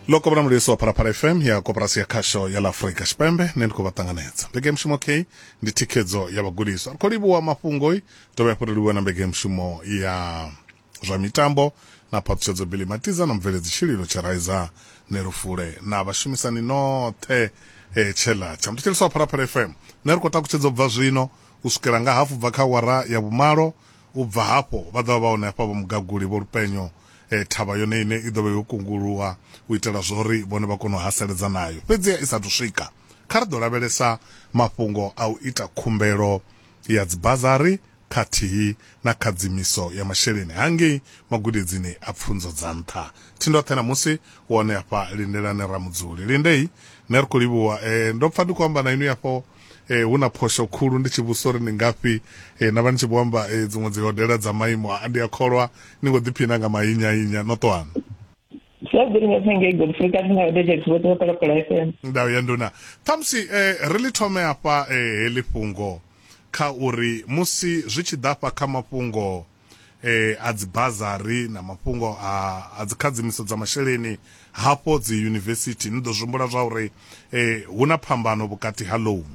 lo kovhona mulisi wa phalaphala fm ya koporasi ya khasho ya ḽa afurika tshipembe nṋe ndi khou vha ṱanganedza mbege mushumo k ndi thikhedzo ya vhagudiswa ri khou livhuwa mafhungoi dovha hafhu ri livhuwa na mbege mushumo ya zwa mitambo na phaṱhutshedzo bili matiza na mubveledzi tshililo tsheraiza ne lufule na vhashumisani noṱhe e tshela tsha muthetsheliso wa phalaphala fm nṋe ri khou takutshedza u bva zwino u swikela nga hafu bva kha wara ya vhumalo U bva hafho, vha ḓo vha vha hone hafha vho mugaguli, vho lupenyo, e, thavha yone iṋe i ḓo vha yo kunguluwa u itela zwa uri vhone vha kone u haseledza nayo. Fhedziha i sa athu swika, kha ri ḓo lavhelesa mafhungo a u ita khumbelo ya dzibazari khathihi na khadzimiso ya masheleni hangei magudedzini a pfunzo dza nṱha. Thindoṱhe ṋamusi u hone hafha, lindelani Ramudzuli. Lindei, nṋe ri khou livhuwa. E, ndo pfa ndi khou amba na inwi afho. eh, hu na phosho khulu ndi tshi vhusa uri ni ngafhi eh, na vha ni tshi vho amba eh, dziṅwe dzi hodela dza maimo a ndi a kholwa ni ngo ḓiphina nga mahinya hinya no ṱoana ndau ya nduna ṱhamusi eh, ri ḽi thome afha eh, heḽi fhungo kha uri musi zwi tshi ḓa fha kha mafhungo eh, a dzibazari na mafhungo a, a dzikhadzimiso dza masheleni hafho dzi yunivesithi ni ḓo zwimbula zwa uri eh, hu na phambano vhukati ha loan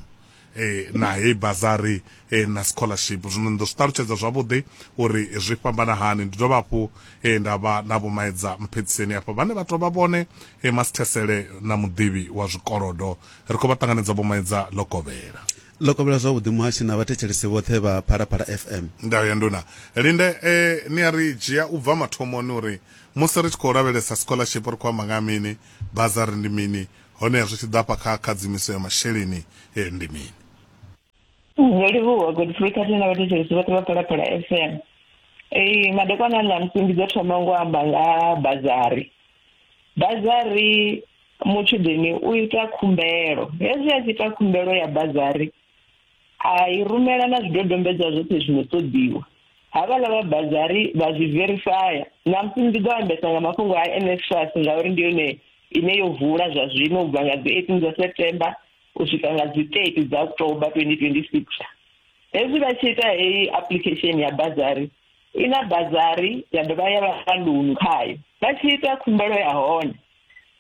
eh, na heyi bazari eh, na scholarship zwino ni ḓo zwi ṱalutshedza zwavhuḓi uri zwi fhambana hani ndi dovha hafhu eh, nda vha na vhomaedza mphedziseni hafha vhane vha tou vha vhone eh, masithesele na muḓivhi wa zwikolodo ri khou vha ṱanganedza vhomaedza ḽo kovhela Ḽo kovhela zwavhuḓi muhashi na vhathetshelesi vhoṱhe vha Phalaphala FM. Ndayo ya Nduna Linde, e, ni a ri dzhia u bva mathomoni uri musi ri tshi khou lavhelesa scholarship ri khou amba nga ha mini, bazari ndi mini, honeha zwi tshi ḓa hafha kha khadzimiso ya masheleni ndi mini? Zwo livhuwa Godfrey khathihi na vhathetshelesi vhoṱhe vha Phalaphala FM. Ee, madekwana a ṋamusi ndi ḓo thoma ngo amba nga ha bazari. Bazari. mutshudeni u ita khumbelo hezwi a tshi ita khumbelo ya bazari a i rumela na zwidodombedzwa zwoṱhe zwino ṱoḓiwa havhala vha bazari vha zwi verifaya namusi ndi ḓo ambesa nga mafhungo a nsfas ngauri ndi yone ine yo vula zwa zwino u bva nga dzi eighteen dza september u swika nga dzi thirty dza october twenty twenty six hezwi vha tshi ita heyi application ya bazari i na bazari ya dovha ya vha loan khayo vha tshi ita khumbelo ya hone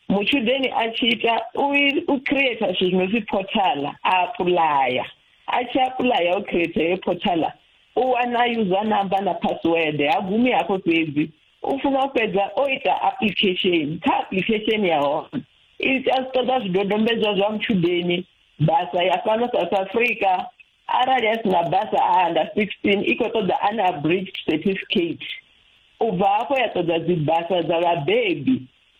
muchudeni a tshi ita u create zwithu zwi no pfi portala a apulaya a tshi apulaya u create heyo portala u wana user number na password ha gumi hafho fhedzi u funa u fhedza o ita application kha application ya hone i ita zwi ṱoḓa zwidodombedzwa zwa mutshudeni basa ya fhano south africa arali a si na basa a under 16 i khou ṱoḓa an abridged certificate u bva hafho ya ṱoḓa dzibasa dza vhabebi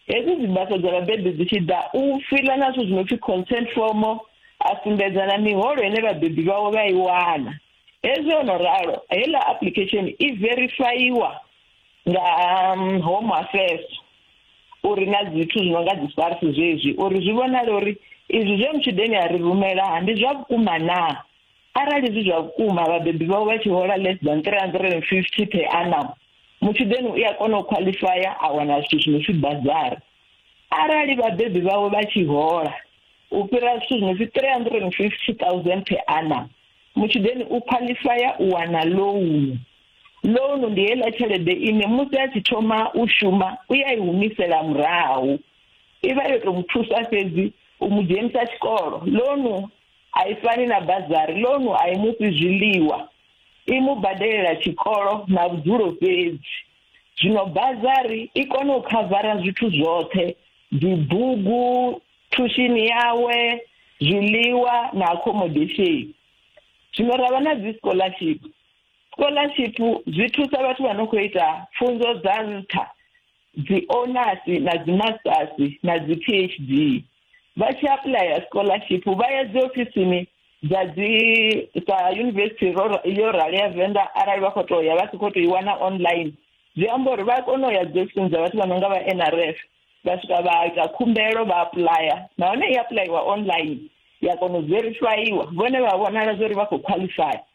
hedzi dzibasa dza vhabebi dzi tshi ḓa u fila na zwithu zwi no pfi consent form a sumbedza na miholo ine vhabebi vhawe vha i wana hezwi o no ralo heiḽa application i verifayiwa nga um, home affairs uri na zwithu zwi no nga dzi sars zwezwi uri zwi vhonale uri izwi zwe mutshudeni a ri rumela ha ndi zwa vhukuma naa arali zwi zwa vhukuma vhabebi vhao vha tshi hola less than three hundred and fifty per annum mutshudeni u a kona u qualifya a wana zwithu zwi no pfi bazari arali vhabebi vhawe vha tshi hola u fhira zwithu zwi no pfi three hundred and fifty thousand per annum mutshudeni u qualifya u wana loan Loan ndi heiḽa tshelede ine musi a tshi thoma u shuma u ya i humisela murahu i vha yo tou mu thusa fhedzi u mu dzhenisa tshikolo loan a i fani na bazari loan a i mufhi zwiḽiwa i mu badelela tshikolo na vhudzulo fhedzi zwino bazari i kone u khavara zwithu zwoṱhe dzi bugu thushini yawe zwiḽiwa na accommodation zwino ravha na dzi scholarship Scholarship zwi thusa vhathu vha no khou ita pfunzo dza nṱha dzi onasi na dzi masters na dzi PhD vha tshi apuḽaya scholarship vha ya dzi ofisini dza dzi sa yunivesithi yo rali ya venḓa arali vha khou to ya vha si khou to i wana online zwi amba uri vha kona u ya dzi ofisini dza vhathu vha no nga vha nrf vha swika vha ita khumbelo vha apuḽaya nahone i apuḽayiwa online ya kona u verifaiwa vhone vha vhonala zwa uri vha khou khwaḽifaya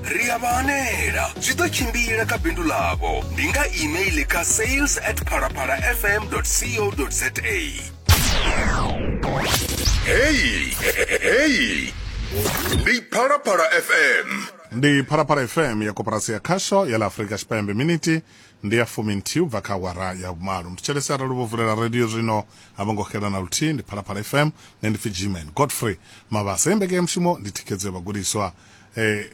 Ri a vha hanela, zwi ḓo tshimbila kha bindu ḽavho. Ndi nga email kha sales at phalaphalafm.co.za. Heyi, heyi, ndi Phalaphala FM. ndi phalaphala fm ya koporasi ya khasho ya la afurika tshipembe miniti ndi ya fumi nthihi u bva kha awara ya vhumalo ndi tshelesi arali vho vulela radio zwino a vho ngo xela na luthihi ndi phalaphala fm nṋe ndi pfi gman godfrey mabasa ye mbeke ya mushumo ndi thikhedzo ya vhagudiswa E,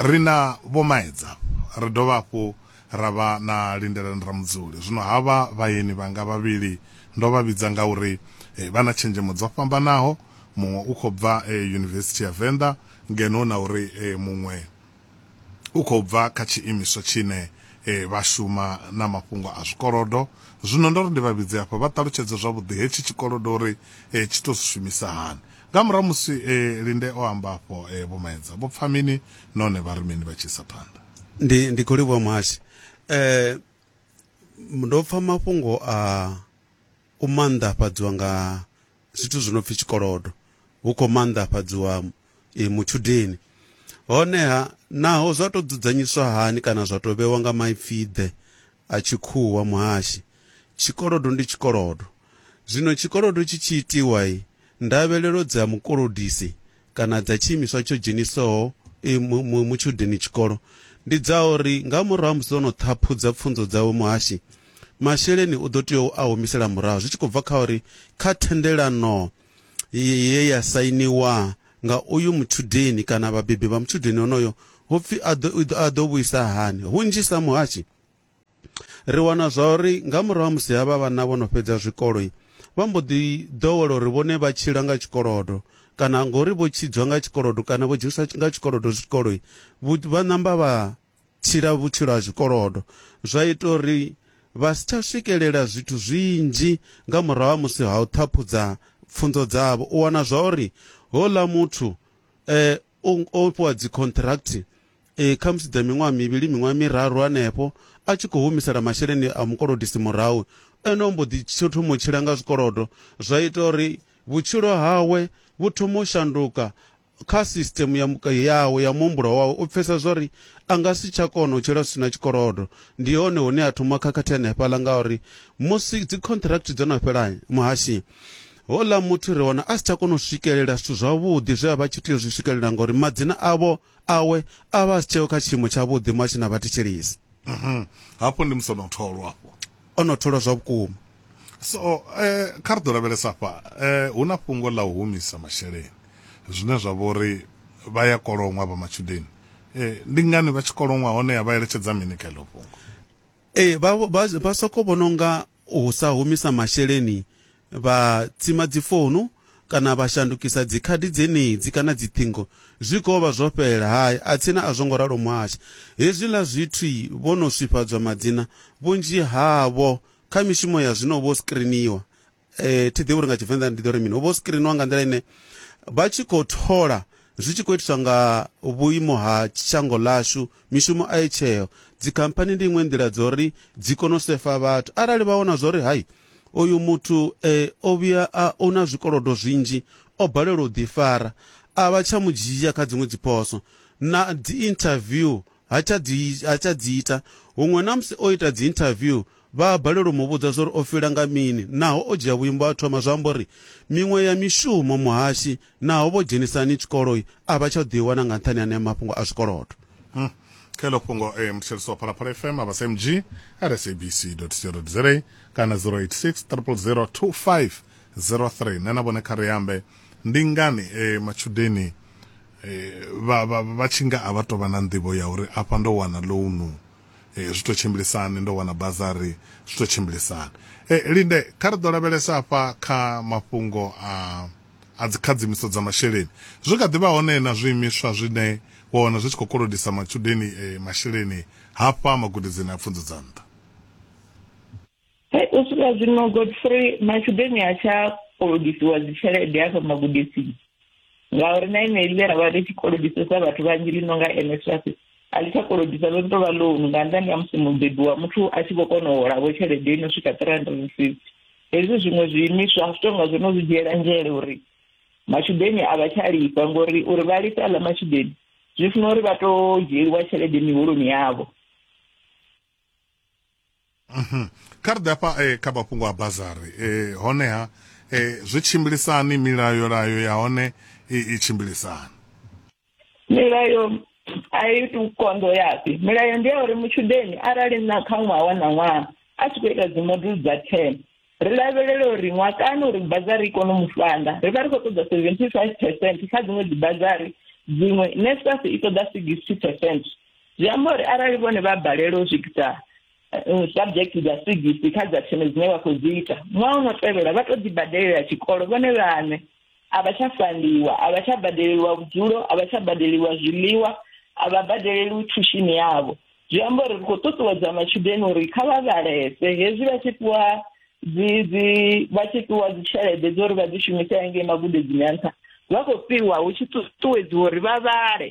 ri na Vho Maedza, ri dovha hafhu ra vha na Lindelani Ramudzuli. Zwino havha vhaeni vhanga vhavhili ndo vha vhidza ngauri e, vha na tshenzhemo dzo fhambanaho, muṅwe u khou bva e, Yunivesithi ya Venḓa ngeno na uri e, muṅwe u khou bva kha tshiimiswa tshine e, vha shuma na mafhungo a zwikolodo. Zwino ndo ri ndi vha vhidze hafha vha ṱalutshedze zwavhuḓi hetshi tshikolodo uri e, tshi tou zwi shumisa hani. Nga murahu musi Linde o amba afho, Vho Maedza vho pfa mini nahone vha ri mini vha tshi isa phanḓa? Ndi, ndi khou livhuwa muhashi. Ndo pfa mafhungo a u maanḓafhadziwa nga zwithu zwi no pfi tshikolodo, hu khou maanḓafhadziwa mutshudeni. Honeha, naho zwa tou dzudzanyiswa hani kana zwa tou vhewa nga maipfi-ḓe a tshikhuwa muhashi, tshikolodo ndi tshikolodo. Zwino tshikolodo tshi tshi itiwa, ndavhelelo dza mukolodisi kana dza tshiimiswa tsho dzheniswaho mutshudeni tshikolo ndi dza uri nga murahu ha musi o no ṱhaphudza pfunzo dzawe muhashi, masheleni u ḓo tea u a humisela murahu zwi tshi khou bva kha uri kha thendelano ye ya sainiwa nga uyu mutshudeni kana vhabebi vha mutshudeni onoyo hu pfi a ḓo vhuisa hani. Hunzhisa muhashi. Ri wana zwa uri nga murahu ha musi havha vhana vho no fhedza zwikolo, vha mbo ḓi ḓowela uri vhone vha tshila nga tshikolodo kana ngori vho tshidzwa nga tshikolodo kana vho dzheniswa nga tshikolodo zwikolo, vha ṋamba vha tshila vhutshilo ha zwikolodo. Zwa ita uri vha si tsha swikelela zwithu zwinzhi nga murahu ha musi ha u ṱhaphudza pfunzo dzavho. U wana zwa uri houḽa muthu o o fhiwa dzi contract eh, khamusi dza miṅwaha mivhili miṅwaha miraru hanefho a tshi khou humisela masheleni a mukolodisi murahu ene o mbo ḓi tsho thoma u tshila nga zwikolodo zwa ita uri vhutshilo hawe vhu thoma u shanduka kha system ya muka yawe ya muhumbulo wawe u pfesa zwori a nga si tsha kona u tshila zwi si na tshikolodo ndi hone hune a thoma khakhathi hanefhaḽa ngauri musi dzi contract dzo no fhela muhashi Houḽa muthu ri wana a si tsha kona u swikelela zwithu zwavhuḓi zwe a vha tshi tea u zwi swikelela ngauri madzina avho awe a vha a si tsheo kha tshiimo tshavhuḓi muhashini a vha thetshelesi. Mhm. Hafho ndi musi o no tholwa afho. O no tholwa zwa vhukuma. So, eh, kha ri ḓo lavhelesa afha, eh, hu na fhungo ḽa u humisa masheleni, zwine zwa vha uri vha ya koloṅwa vha matshudeni. Eh, ndi ngani vha tshi koloṅwa, honeha vha eletshedza mini kha heḽo fhungo? Ee, vha, vha, vha sokou vhona unga u sa humisa masheleni, vha tsima dzifounu kana vha shandukisa dzikhadi dzenedzi kana dziṱhingo, zwi khou vha zwo fhela. Hai, atsina a zwo ngo ralo muhasha. Hezwiḽa zwithu vho no swifhadzwa madzina, vhunzhi havho kha mishumo ya zwino vho screeniwa. Thi ḓivhi uri nga Tshivenḓa ndi ḓo ri mini, vho screeniwa nga nḓila ine vha tshi khou thola zwi tshi khou itiswa nga vhuimo ha shango ḽashu, mishumo a i tsheo dzikhamphani ndi iṅwe nḓila dzo ri dzi kone u sefa vhathu arali vha wana zwo ri hai uyu muthu eh, o vhuya a u na zwikolodo zwinzhi o balelwa u ḓifara a vha tsha mu dzhia kha dziṅwe dziphoso na dzi interview ha tsha dzi ha tsha dzi ita huṅwe na musi o ita dzi interview Vha a balelwa u mu vhudza zwa uri o fila nga mini. Naho o dzhia vhuimo a thoma zwa amba uri, Miṅwe ya mishumo, muhashi, naho vho dzhenisa hani tshikoloi, a vha tsha ḓo i wana nga nṱhani ha anea mafhungo a zwikolodo. Kha heḽo fhungo e muthetshelesi wa Phalaphala FM a vha SMG at sabc.co.za kana 086 000 2503. Nṋe na vhone kha ri ambe ndi ngani matshudeni vha tshi nga a vha tou vha na nḓivho ya uri afha ndo wana ḽounu. zwi to tshimbilisani ndo wana bazari zwi to tshimbilisani e, linde kha ri ḓo lavhelesa afha kha mafhungo a a dzikhadzimiso dza masheleni zwi kha ḓivha hone na zwiimiswa zwine wa wana zwi tshi khou kolodisa matshudeni e, masheleni hafha magudedzini a pfunzo dza nṱha Hey, u swika zwino godfrey matshudeni a tsha kolodisiwa dzitshelede hafha magudisini ngauri na ine ḽe ra vha ri tshi kolodisesa vhathu vhanzhi ḽi no nga nsfas a ḽi tsha kolodisa ḽo tou vha loan nga nnḓani ha musi mubebi wa muthu a tshi vho kona u holavho tshelede ino swika three hundred and fifty hezwi zwiṅwe zwiimiswa a zwi tou nga zwo no zwi dzhiela nzhele uri matshudeni a vha tsha lifha ngori uri vha lifhe aḽa matshudeni zwi funa uri vha tou dzhieliwa tshelede miholoni yavho Mhm. kha ri ḓe afha eh, kha mafhungo a bazari eh, honeha eh, zwi tshimbilisani milayo layo ya hone i, i tshimbilisani milayo a i tu konḓo yapi milayo ndi ya uri mutshudeni arali na kha ṅwaha wa na ṅwaha a tshi khou ita dzimodulu dza ten Ri lavhelela uri ṅwakani uri bazari i kone u mu fhaḽa, ri vha ri khou ṱoḓa 75 percent kha dziṅwe dzibazari dziṅwe, NSFAS i ṱoḓa 60 percent. Zwi amba uri arali vhone vha balelwa u swikisa eh, subject dza 60 kha dza 10 dzine vha khou dzi ita, ṅwaha u no tevhela vha tou ḓibadelela tshikolo vhone vhaṋe. a vha tsha fandiwa a vha tsha badeleliwa vhudzulo a vha tsha badeleliwa zwiḽiwa a vha badeleliwi thushini yavho zwi amba uri ri khou ṱuṱuwedza matshudeni uri kha vha vhalese hezwi vha tshi fhiwa dzi dzi vha tshi fhiwa dzi tshelede dzo uri vha dzi shumise hangei magudedzini a nṱha vha khou fhiwa hu tshi ṱuṱuwedziwa uri vha vhale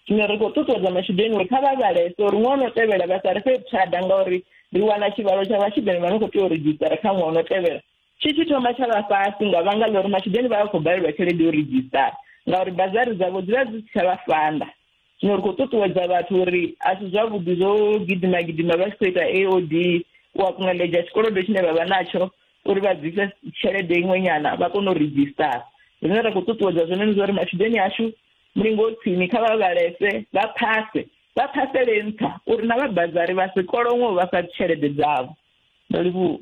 zwino ri khou ṱuṱuwedza matshudeni uri kha vha vhalese uri ṅwaha no tevhela vha sa ri fhe vhuthada ngauri ri wana tshivhalo tsha vhatshudeni vha no khou tea u redzhisitara kha ṅwaha no tevhela Tshi tshi thoma tsha vha fhasi nga vhanga ḽa uri matshudeni vha vha khou balelwa tshelede yo ridzhisitara ngauri bazari dzavho dzi vha dzi si tsha vha fanda. Zwino ri khou ṱuṱuwedza vhathu uri a si zwavhuḓi zwo gidima gidima vha tshi khou ita AOD u a kungeledza tshikolodo tshine vha vha natsho uri vha bvise tshelede iṅwe nyana vha kone u ridzhisitara. Zwine ra khou ṱuṱuwedza zwone ndi zwauri matshudeni ashu mulingo u tsini kha vha vhalese vha phase vha phasele nṱha uri na vha bazari vha si kolonwe u vha fha tshelede dzavho. nda livhuwa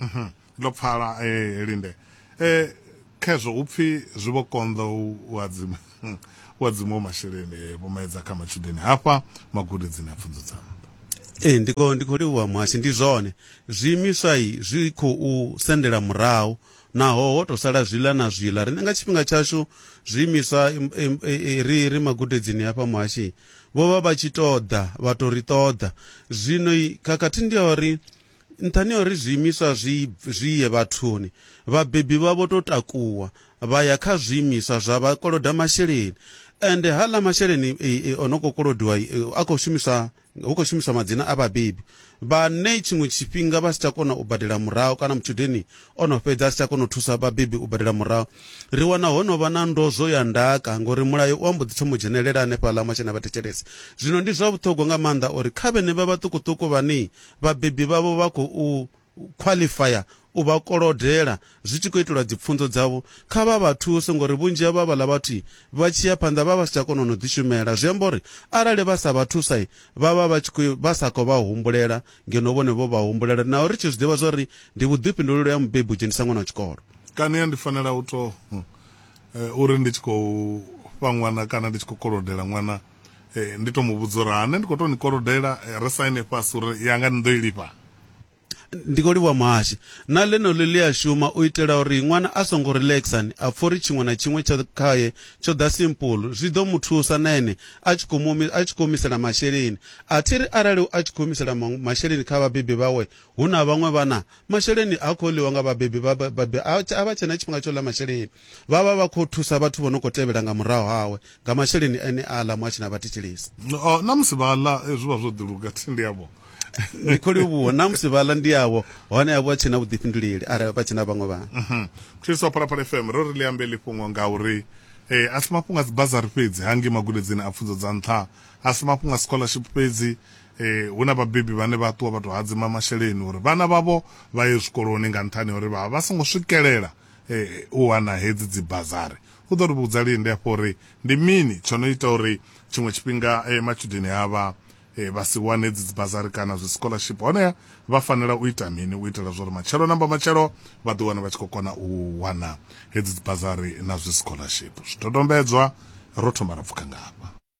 mhm. ndo pfala eh, linde eh, khezwo hu pfi zwi vho konḓa u adzima u adzima masheleni eh, vho maedza kha matshudeni hafha magudedzini a pfunzo dza nṱha ee ndi khou ndi khou livhuwa muhasho ndi zwone zwiimiswa i zwi khou sendela murahu naho ho to sala zwiḽa na zwiḽa riṋe nga tshifhinga tshashu zwiimiswa ri ri magudedzini hafha muhashi Vho vha vha tshi tou ḓa vha tou ri ṱoḓa. Zwino khakhathi ndi ya uri nṱhani ha uri zwiimiswa zwi zwi ye vhathuni, vhabebi vha vho tou takuwa vha ya kha zwiimiswa zwa vha koloda masheleni. Ende haaḽa masheleni o no khou kolodiwa a khou shumiswa hu khou shumiswa madzina a vhabebi. vhane tshiṅwe tshifhinga vha si tsha kona u badela murahu kana mutshudeni o no fhedza a si tsha kona u thusa vhabebi u badela murahu ri wana ho no vha na ndozwo ya ndaka ngori mulayo u ambo ḓi thoma u dzhenelela hanefhaḽa masheleni a vha thetshelesa zwino ndi zwa vhuṱhogwa nga maanḓa uri kha vhene vha vhaṱukuṱuku vhane vhabebi vhavho vha khou khwaḽifaya u vha kolodela zwi tshi khou itelwa dzipfunzo dzavho, kha vha vha thuse ngori vhunzhi ha vha vhaḽa vhathu vha tshi ya phanḓa vha vha si tsha kona no ḓi shumela zwi amba uri arali vha sa vha thusa vha vha vha tshi khou vha sa khou vha humbulela ngeno vhone vho vha humbulela naho ri tshi zwi ḓivha zwori ndi vhuḓifhinduleli ha mubebi u dzhenisa ṅwana wa tshikolo. Kania ndi fanela u to uri ndi tshi khou fha ṅwana kana ndi tshi khou kolodela ṅwana ndi to mu vhudza uri ane ndi kho to ni kolodela ri saine fhasi uri yanga ni ḓo i lifha. Ndi khou livhuwa muhashi na ḽeneḽo ḽi a shuma u itela uri ṅwana a songo relaxer ni a pfa uri tshiṅwe na tshiṅwe tsha khaye tsho ḓa simple zwi ḓo mu thusa na ene a tshi khou mu a tshi khou humisela masheleni a thi ri arali a tshi khou humisela maṅwe masheleni kha vhabebi vhawe hu na vhaṅwe vhana masheleni ha khou ḽiwa nga vhabebi vha vhabebi a vha tshe na tshifhinga tsho ḽa masheleni Vha vha vha khou thusa vhathu vho no khou tevhela nga murahu hawe nga masheleni ane a ḽa mu a tshi na vha thetshelesi. Oh, na musi vha ḽa eh, zwi vha zwo ḓiluga thi ndi avho. Ndi khou livhuwa na musi vha ḽa ndi avho hone a vha tshi na vhuḓifhinduleli arali vha tshi na vhaṅwe vhana. Mhm. Khristo wa Phalaphala FM ro ri ḽi ambe ḽi fhungo nga uri eh, a si mafhungo a dzibazari fhedzi hangei magudedzini a pfunzo dza nṱha, a si mafhungo a scholarship fhedzi eh, hu na vhabebi vhane vha ṱuwa vha tou hadzima masheleni uri vhana vhavho vha ye zwikoloni nga nṱhani ha uri vha vha vha songo swikelela u wana hedzi dzi bazari. U ḓo ri vhudza lini hafha uri ndi mini tsho no ita uri tshiṅwe tshifhinga matshudeni avha vha si wane hedzi dzi bazari kana zwi scholarship, honeha vha fanela u ita mini u itela zwa uri matshelo na mbamatshelo vha ḓi wane vha tshi khou kona u wana hedzi dzi bazari na zwi scholarship. Zwidodombedzwa, ro thoma ra pfuka nga hafha.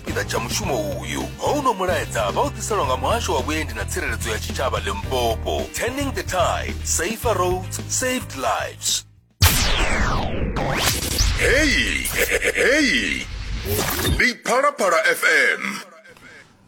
tshipiḓa tsha mushumo uyu houno mulaedza vha u ḓiselwa nga muhasho wa vhuendi na tsireledzo ya tshitshavha limpopo turning the tide safer roads saved lives heyi heyi ndi phalaphala fm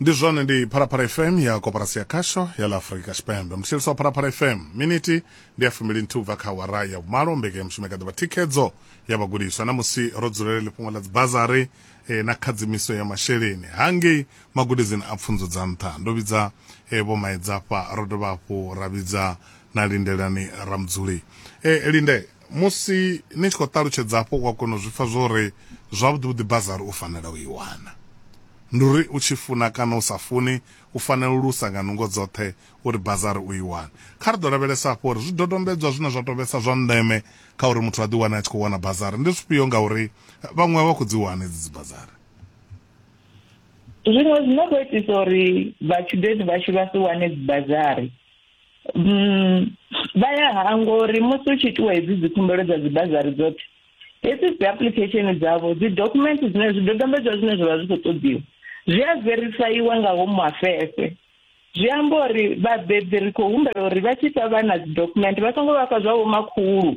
ndi zwone ndi phalaphala fm ya koporasi ya khasho ya la afurika tshipembe mutshilisi wa phalaphala fm miniti ndi ya fumili nthihi ubva kha wara ya vhumalo mbekanya mushumo i kha ḓivha thikhedzo ya vhagudiswa na musi ro dzulela lifhungo ḽa dzibazari eh, na khadzimiso ya masheleni hangei magudedzini a pfunzo dza nṱha ndo vhidza eh, vho maedzafha ro dovha hafhu ra vhidza na lindelani ramudzuli eh, linde musi ni tshi khou ṱalutshedza hafho u a kona u zwi pfa zwo ri zwavhuḓi vhuḓi bazari u fanela u i wana ndi uri u tshi funa kana u sa funi u fanela u lusa nga nungo dzoṱhe uri bazari u i wane. Kha ri ḓo lavhelesa hafhu uri zwidodombedzwa zwine zwa tou vhesa zwa ndeme kha uri muthu a ḓiwane a tshi khou wana bazari ndi zwifhio ngauri vhaṅwe a vha khou dzi wana hedzi dzibazari. Zwiṅwe zwi no khou itisa uri vhatshudeni vhashu vha si wane dzibazari vha ya hangwa uri musi u tshi itiwa hedzi dzikhumbelo dza dzibazari dzoṱhe hedzi dzi application dzavho dzi document dzine zwidodombedzwa zwine zwa vha zwi khou ṱoḓiwa zwi a verifaiwa nga home affairs Zwi amba uri vhabebi ri khou humbela uri vha tshi fha vhana dzi document vha songo vha fha zwa vho makhulu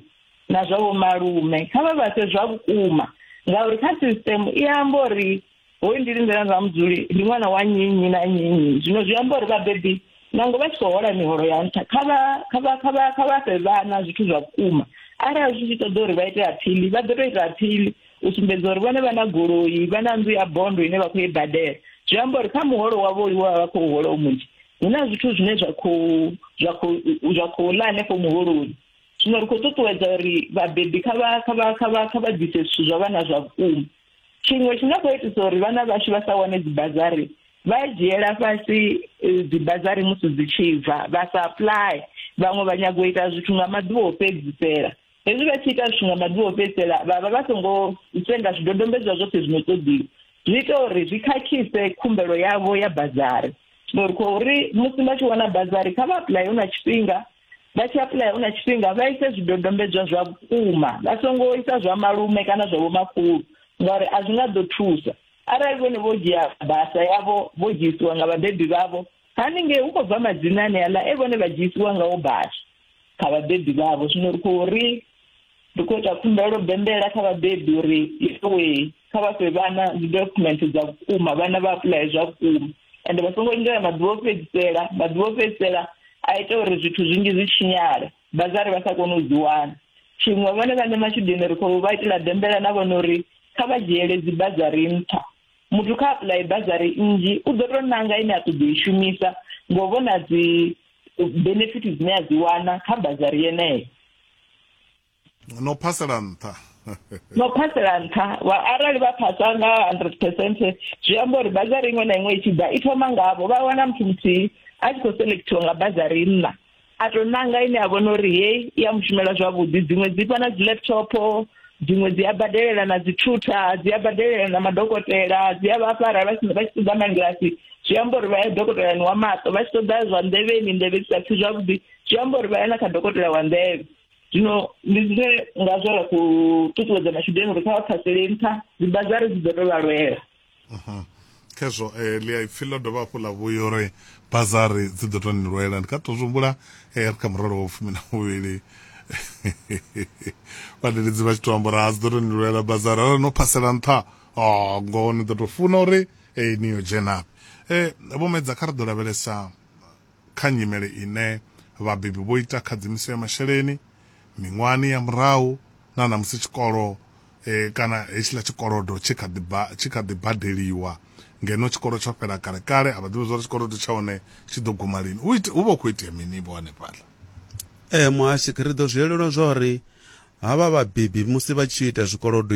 na zwa vho malume kha vha vha fhe zwa vhukuma ngauri kha system i amba uri hoyu ndi lindela nga mudzuli ndi ṅwana wa nnyi nnyi na nnyi nnyi zwino zwi amba uri vhabebi nango vha tshi khou hola miholo ya nṱha kha vha kha vha kha vha kha vha fhe vhana zwithu zwa vhukuma arali zwi tshi ṱoḓa uri vha ite aphili vha ḓo tou ita aphili u sumbedza uri vhone vha na goloi vha na nnḓu ya bondo ine vha khou i badela zwi amba uri kha muholo wavho uyu wa vha khou hola u munzhi hu na zwithu zwine zwa khou zwa khou zwa khou ḽa hanefho muholoni zwino ri khou ṱuṱuwedza uri vhabebi kha vha kha vha kha vha kha vha ḓise zwithu zwa vhana zwa vhukuma tshiṅwe tshi nga khou itisa uri vhana vhashu vha sa wane dzibazari vha dzhiela fhasi eh, dzibazari musi dzi tshi bva vha sa apply vhaṅwe vha nyago u ita zwithu nga maḓuvha o fhedzisela Hezwi vha tshi ita zwithu nga maḓuvha o fhedzisela vha vha vha songo senga zwidodombedzwa zwoṱhe zwino ṱoḓiwa zwi ita uri zwi khakhise khumbelo yavho ya bazari ngori khou ri musi vha tshi wana bazari kha vha apuḽaye hu na tshifhinga vha tshi apuḽaya hu na tshifhinga vha ise zwidodombedzwa zwa vhukuma vha songo isa zwa malume kana zwa vhomakhulu ngauri a zwi nga ḓo thusa arali vhone vho dzhia basa yavho vho dzhiisiwa nga vhabebi vhavho haningei hu khou bva madzina ane aḽa e vhone vha dzhiisiwa ngawo badi kha vhabebi vhavho zwino ri khou ri ri khou ita khumbelo bembela kha vhabebi uri iwe kha vha fhe vhana dzi document dza vhukuma vhana vha apuḽaye zwa vhukuma ende vha songo lindela maḓuvha o fhedzisela maḓuvha o fhedzisela a ita uri zwithu zwinzhi zwi tshinyale bazari vha sa kone u dzi wana tshiṅwe vhone vhaṋe matshudeni ri khou vha itela bembela na vhona uri kha vha dzhiele dzi bazari nṱha muthu kha apuḽaye bazari nnzhi u ḓo tou nanga ine a ṱoḓa i shumisa ngo vhona dzi benefit dzine a dzi wana kha bazari yeneyo no phasela nṱha no phasela nṱha wa arali vha phasa nga 100 percent zwi amba uri bazari iṅwe na iṅwe i tshi ḓa i thoma ngavho vha wana muthu muthihi a tshi khou selectiwa nga bazari nna a to nanga ine a vhona uri heyi i ya mushumela zwavhuḓi dziṅwe dzi fha na dzi laptop dziṅwe dzi a badelela na dzi thutha dzi a badelela na madokotela dzi a vha fara vha tshi vha tshi ṱoḓa mangilasi zwi amba uri vha ya dokotelani wa maṱo vha tshi ṱoḓa zwa nḓevheni nḓevhe dzi sa pfhi zwavhuḓi zwi amba uri vha ya na kha dokotela wa nḓevhe zwino ndi zwine ngazwo ra khou ṱuṱuwedza matshudeni uri kha vha phasele nṱha dzibazari dzi ḓo to vha lwela khezwo eh, ḽi a ipfi ḽo dovha hafhu ḽa vhuya uri bazari dzi ḓo tou ni lwela ndi kha tou zwi humbula eh, ri kha murole wa fumi na muvhili vhadededzi vha tshi tou amba uri a dzi ḓo tou ni lwela bazari arali no phasela nṱha o ngoho ni ḓo tou funa uri eh, ni yo dzhenafhi um vho medza kha ri ḓo lavhelesa kha nyimele ine vhabebi vho ita khadzimiso ya masheleni miṅwahani ya murahu na ṋamusi tshikolo kana hetshiḽa tshikolodo tshi kha ḓi tshi kha ḓi badeliwa ngeno tshikolo tsho fhela kale kale, a vha ḓivhi zwa uri tshikolodo tsha hone tshi ḓo guma lini. Hu hu vha hu khou itea mini vho hanefhaḽa? Ee muhasho, ri ḓo zwi elelwa zwa uri havha vhabebi musi vha tshi ita zwikolodo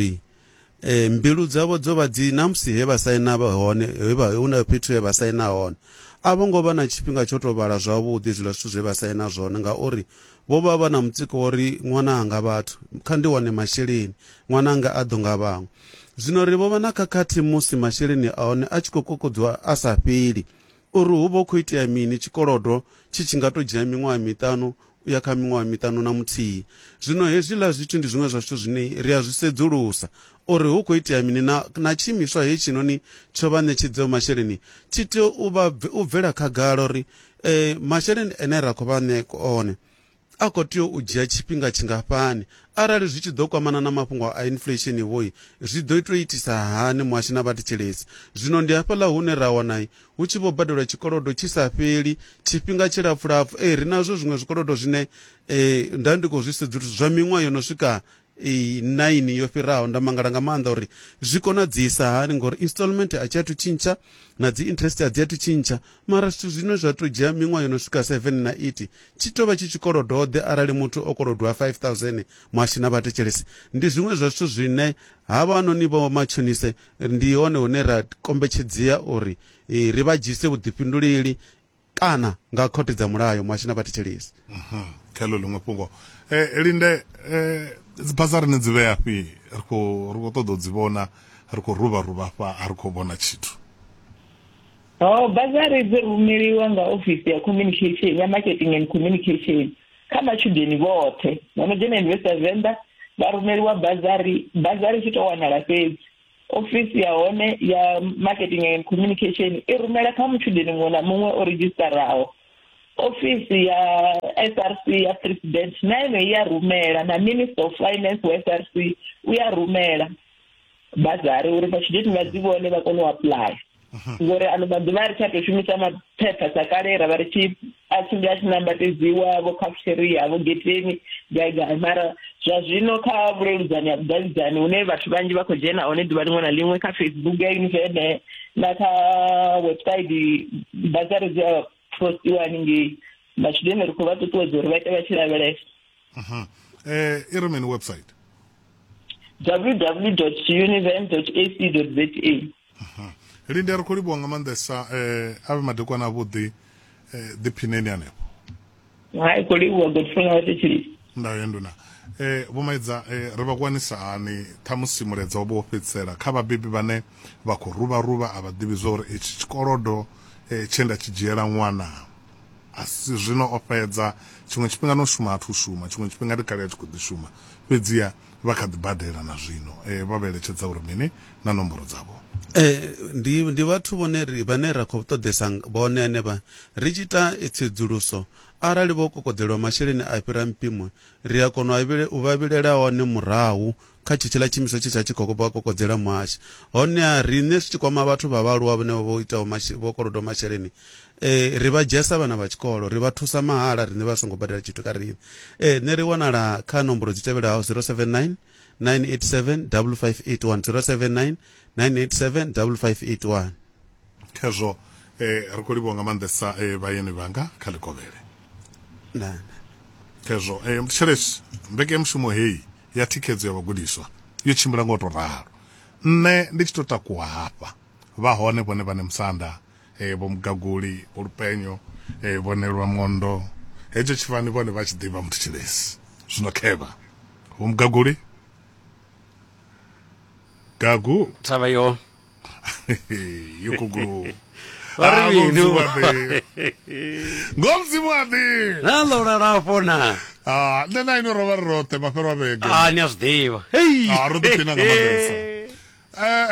e, mbilu dzavho dzo vha dzi na musi he vha saina vha hone he vha hu na fhethu he vha saina hone a vho ngo vha na tshifhinga tsho to vhala zwavhuḓi zwiḽa zwithu zwe vha saina zwone ngauri vho vha vha na mutsiko wa ri ṅwana anga vhathu kha ndi wane masheleni ṅwana anga a ḓo nga vhaṅwe zwino ri vho vha na khakhathi musi masheleni a hone a tshi khou kokodziwa a sa fheli Uri hu vha hu khou itea mini, tshikolodo tshi tshi nga tou dzhia miṅwaha miṱanu u ya kha miṅwaha miṱanu na muthihi. Zwino hezwiḽa zwithu ndi zwiṅwe zwa zwithu zwine ri a zwi sedzulusa, uri hu khou itea mini, na, na tshiimiswa hetshinoni tsho vha ṋetshedzaho masheleni tshi tea u vha, u bvela khagala uri, Ee, masheleni ane ra khou vha ṋea one, A khou tea u dzhia tshifhinga tshingafhani? Arali zwi tshi ḓo kwamana na mafhungo a inflesheni-vho-i, zwi ḓo tou itisa hani muhasho na vhathetshelesi? Zwino ndi hafhaḽa hune ra wana hu tshi vho badelwa tshikolodo tshi sa fheli, tshifhinga tshilapfulapfu. Ee, ri nazwo zwiṅwe zwikolodo zwine nda ndi khou zwi sedzulusa zwa miṅwaha yo no swika 9 yo fhiraho nda mangala nga maanḓa uri zwi konadzisa hani ngori installment a tshi athu tshintsha na dzi interest a dzi athu tshintsha mara zwithu zwine zwa to dzhia miṅwaha yo no swika 7 na 8 tshi tovha tshi tshikolodode arali muthu o kolodwa 5000 mwashi na vhatetshelesi ndi zwiṅwe zwa zwithu zwine havha noni vho matshonise ndi hone hune ra kombetshedzea uri eh, ri vha dzhise vhuḓifhinduleli kana nga khothe dza mulayo muhashi na vhathetshelesi mhm. kha ḽo ḽiṅwe fhungo um linde um dzibhasa rine dzi vhea fhi ri kho ri kho ṱoḓa u dzi vhona ri kho ruvha ruvha fha a ri kho vhona tshithu ho bazari dzi rumeliwa nga ofisi ya communication ya marketing and communication kha matshudeni vhoṱhe vha no dzhena university ya venḓa vha rumeliwa bazari bazari tshi to wanala fhedzi ofisi ya hone ya marketing and communication i rumela kha mutshudeni muṅwe na muṅwe o redzhistaraho ofisi ya src ya president na ene i ya rumela na minister of finance wa src u ya rumela bazari uri vhatshudeni vha dzi vhone vha kone u apuḽaya mhm. ngori ano maḓuvha a ri tsha tou shumisa maphepha sa kale ra vha ri tshi a tshimbila a tshi nambatedziwa vho khafusheria vho geteni gai gai mara zwa zwino kha vhuleludzani ha vhudavhidzani hune vhathu vhanzhi vha khou dzhena hone ḓuvha liṅwe na liṅwe kha facebook ya univene na kha website bazari dzi a postiwa haningei matshudeni ri khou vha ṱuṱuwedza uri vha ite vha tshi lavhelesa um i ri mini website www univen ac za lindi a ri khou livhuwa nga maanḓesa eh, a vhe madekwana avhuḓi eh, ḓiphineni hanefho hai khou livhuwa godfrey nga vhathetsheli ndayo ya nduna eh, vhomaidza eh, ri vha kwanisa hani ṱhamusi muledza wo vha wo fhedzisela kha vhabebi vhane vha khou ruvha ruvha a vha ḓivhi zwa uri itshi tshikolodo eh, tshe nda tshi dzhiela ṅwana asi zwino o fhedza tshiṅwe tshifhinga no shuma athu shuma tshiṅwe tshifhinga ndi kale a tshi khou ḓi shuma fhedziha Vha kha ḓi badela na zwino. Vha vha eletshedza uri mini na nomboro dzavho? Ee, ndi, ndi vhathu vhone ri, vhane ra khou ṱoḓesa vhone henevha. Ri tshi ita tsedzuluso, arali vho kokodzelwa masheleni a fhira mpimo, ri a kona u vha vhilela one murahu kha tshetshiḽa tshiimiswa tshe tsha tshi khou vha kokodzela muhasho. Honeha, riṋe zwi tshi kwama vhathu vha vhaaluwa vhane vha vha vho itaho, vho kolodwaho masheleni, Eh, ri vha dzhesa vhana vha tshikolo ri vha thusa mahala riṋe vha songo badela tshithu kha riṋe eh, nṋe ri wanala kha nomboro dzi tevhelaho 079 987 5581 079 987 5581 khezwo eh, ri khou livhuwa nga maanḓesa eh, vhayeni vhanga kha ḽikovhele khezwo eh, thetshelesi mbekemushumo heyi ya thikhedzo ya vhagudiswa yo tshimbila nga u tou ralo nṋe ndi tshi tou takuwa hafha vha hone vhone vhane musanda eh, vho mugaguli vho lupenyo eh, vho nelwa mondo hetsho tshifani vhone vha tshi ḓivha muthu tshilesi zwino khevha vho mugaguli gagu thavha yo yo kugulu Vha ri mini? ngomzimu wa ḓivha na ḽo lalafho na Ah, nṋe na ino rovha ri roṱhe mafhelo a vhege a ni a zwi ḓivha hei Ah, ro ḓiphina nga maanḓesa. Eh,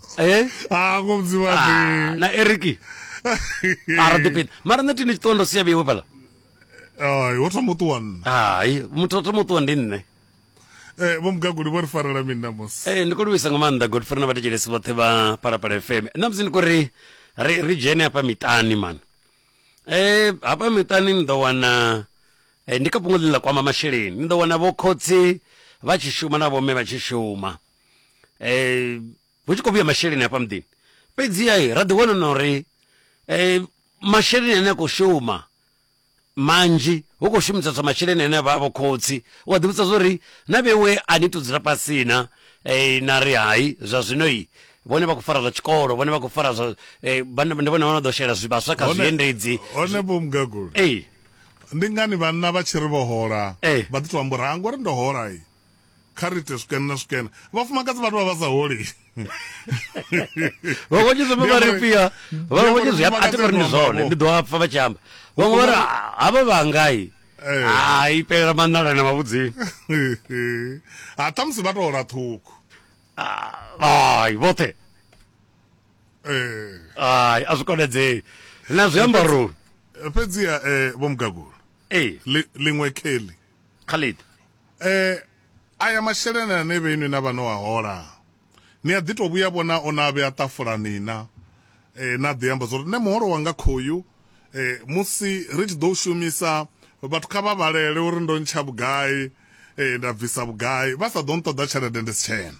eh ah ngo mudzimu wa ah, na eriki ara dipini mara nṋe tini tshiṱondo sia vheiwe fhala ai wo thoma u ṱuwa nṋe hai muthu o thoma u ṱuwa ndi nṋe Eh, vho mugaguli vho ri farela mini namusi eh, ndi khou livhisa nga maanḓa godfrey na vhathetshelesi vhoṱhe vha phalaphala fm namusi ndi khou ri ri ri dzhene hafha miṱani mani eh hafha miṱani ni ḓo wana eh, ndi kha fhungo ḽine ḽa kwama masheleni ni ḓo wana vho khotsi vha tshi shuma na vhomme vha tshi shuma eh hu tshi khou vhuya masheleni hafha muḓini fhedziha ra ḓi wana na uri eh masheleni ane a khou shuma manzhi hu khou shumiseswa masheleni ane avha avho khotsi u a ḓivhudza zwori na vhewe a ni to dzula fhasi na eh, na ri hai zwa zwino i vhone vha khou fara zwa tshikolo vhone vha khou fara zwa eh, vhone vhone vha ḓo shela zwivhaswa kha zwiendedzi hone vho mugagula ee ndi ngani vhanna vha tshi ri vho hola vha ḓi to amba uri ha ngori ndo hola kha ri ite swikene na swikene vhafumakadzi vhathu vha vha sa holi vhaṅwe vhatshi zwi vha ri fia vhaṅwe vhatshi zwi a ti ri zwone ndi ḓo apfa vha tshi amba vhaṅwe vha ri havha vha ngai eh. hai pelela manala na mavhudzini ha ṱhamusi vha to hola ṱhukhu hai vhoṱhe eh. hai a zwi konedzei na zwiambaroni fhedziha eh, vho mugagula liṅwe kheli Khalid. E, aya masheleni ane vhe inwi na vha no a hola, ni a ḓi tou vhuya vhona o na vhea ṱafulani na e, na ḓi amba zwo ri nṋe muholo wanga khoyu e, musi ri tshi ḓo u shumisa vhathu kha vha vhalele uri ndo ntsha vhugai e, nda bvisa vhugai, vha sa ḓo nṱoḓa tshelede ndi si tshena.